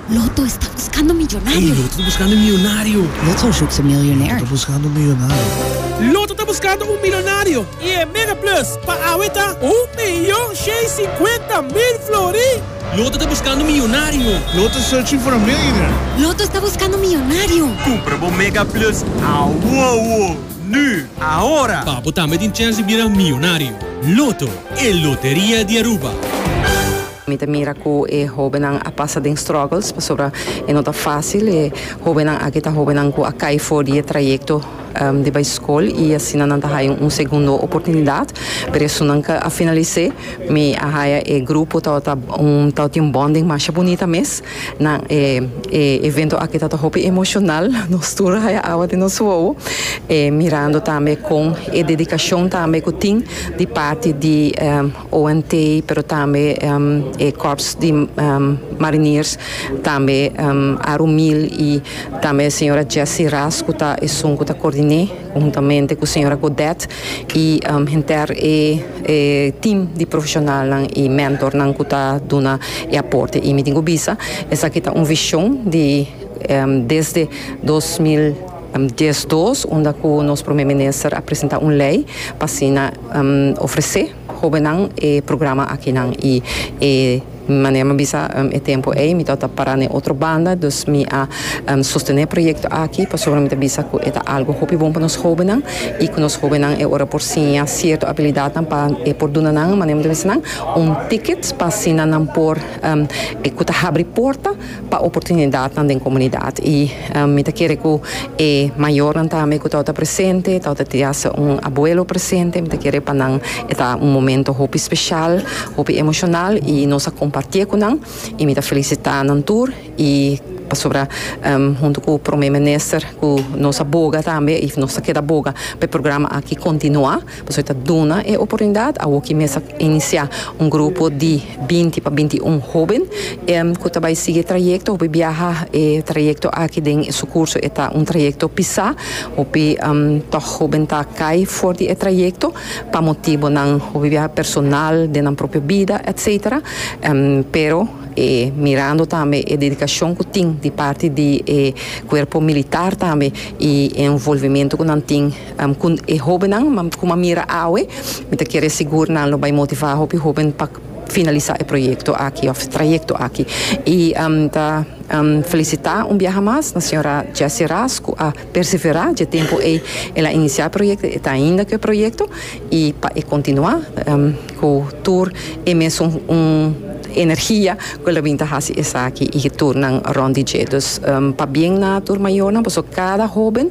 Loto esta buskando miyonario. Loto ta buskando un milonario i e mega plus pa awe ta un miyon shei sinkuenta mil flori. Loto ta buskando miyonario. Loto esta buskando miyonario. Kumpra bo mega plus awowo nu ahora. Pa bo tambe tin chèns di bira miyonario. Loto, e loteria di Aruba. Mi ta mira cu e hobennan a pasa den struggles, pasobra e no ta facil. E hobennan aki ta hobennan cu a cay for di e trayecto di bay scol y asina nan ta haya un segundo oportunidad. Pero esunnan ca a finalisé. Mi a haya e grupo tabata tabata tin un bonding masha bunita mes. Nan e e evento aki tabata hopi emocional. Nos tur a haya awa den nos wowo mirando tambe con e dedicacion tambe cu tin di parti di. ONT, pero tambe e Kòrps di Mariniers, tambe Aru Mil i tambe e señora Jessie Ras ku ta esun ku ta koordiné huntamente ku señora Godet i henter e tim di profeshonalnan i mentornan ku ta duna e aporte. I mi tin ku bisa esaki ta un vishon di desde dos mil dies dos unda ku nos Prome Minister a presentá un lei pa asina ofresé hóbennan e programa akinan i e manera mi a bisa e tempu ei mi tabata pará na e otro banda, dus mi a sostené e proyekto aki pasobra mi ta bisa ku e ta algu hopi bon pa nos hóbennan i ku nos hóbennan e ora por siña sierto abilidatnan pa e por duna nan, manera mi ta bisa nan, un ticket pa asina nan por ku ta habri porta. pa oportunidatnan den komunidat i mi ta kere ku e mayornan tambe ku tabata presente, tabata tin hasta un abuelo presente, mi ta kere pa nan e ta un momento hopi speshal, hopi emoshonal i nos a kompartié ku nan i mi ta felisitá nan tur i pasobra huntu ku Prome Minister ku nos a boga tambe i nos ta keda boga pa e programa aki kontinuá. Pasobra ta duna e oportunidat, awoki mes a inisiá un grupo di binti pa binti i un hóben ku ta bai sigui e trayekto hopi biaha. E trayekto aki den su kurso e ta un trayekto pisá, hopi tòg hóben ta kai for di e trayekto pa motibonan hopi biaha personal, den nan propio bida, etcétera. Pero e mirando tambe e dedikashon ku tin di parti di e kuerpo militar tambe i e envolvimentu ku nan tin Cu e hobennan como a mira awe, mi ta kere sigur nan lo bay motiva hopi hoben pa finalisa e proyecto aki of trayecto aki. Y mi ta felicita un biaha mas na señora Jessy Ras cu a persevera dje tempo ey el a inicia e proyecto, e ta ainda cu e proyecto y pa e continua cu tur e mesun energia cu el a bini ta haci esaki y tur nan rond di dje. Dus pa bien na tur mayornan pasobra cada hoben